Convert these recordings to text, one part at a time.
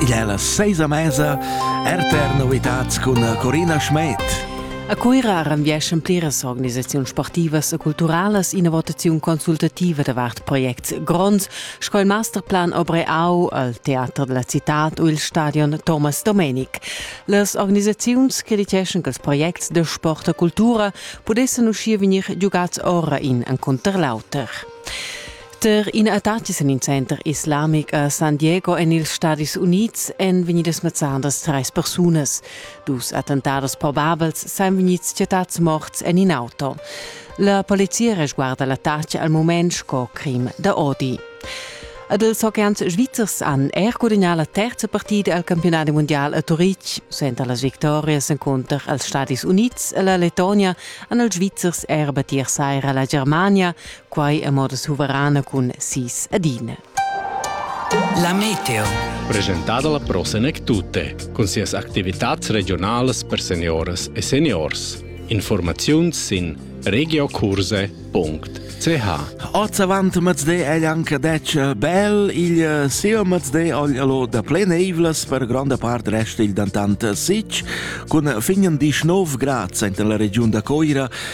Igl è la seisa mesa, RTR Novitats cun Corina Schmed. A Cuira renvieschan pliras organisaziuns sportivas e culturalas ina votaziun consultativa davart projects gronds sco il masterplan Obreau al teater della cittad u il stadion Thomas Domenic. Las organisaziuns crediteschan che ils projects de sport e cultura pudessan uschia vegnir giugats ora in encunter l'auter. Per in attacchi en il center islamic a San Diego en ils Stadis Unids èn vegnidas mezzadas trais persunas. Dus attentados probabels sain vegnids chattads morts en in auto. La polizia resguarda l'attacc al moment sco crim da odi. Ad els oceans svizzers han er gudagnà la terza partida al campionat mondial a Turitg. Suenter las victorias encunter als Stadis Unids e la Letonia han els Svizzers er battir saira la Germania quai a moda suverana cun sis adina. La meteo. Presentada la Prosenec Tutte cun sias activitats regionalas per senioras e seniors. Informaziuns sin regiocurse.ch Oz avant mezde è anche detto bel il eh, sio mezde allo da pleneivlas per grande parte resta il dantant sic cun fingen 19 grad in la region da Coira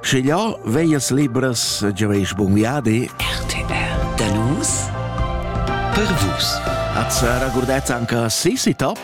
Sche ja veias libras giaveis bun viadi. RTR da nus per vus. At sarà gurdet anche Sissi Top.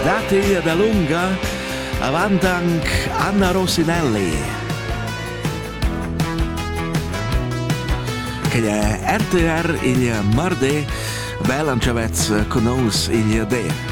Dati da lunga avanti anche Anna Rosinelli. Che è RTR il mardi, bel ancavez con nous il de.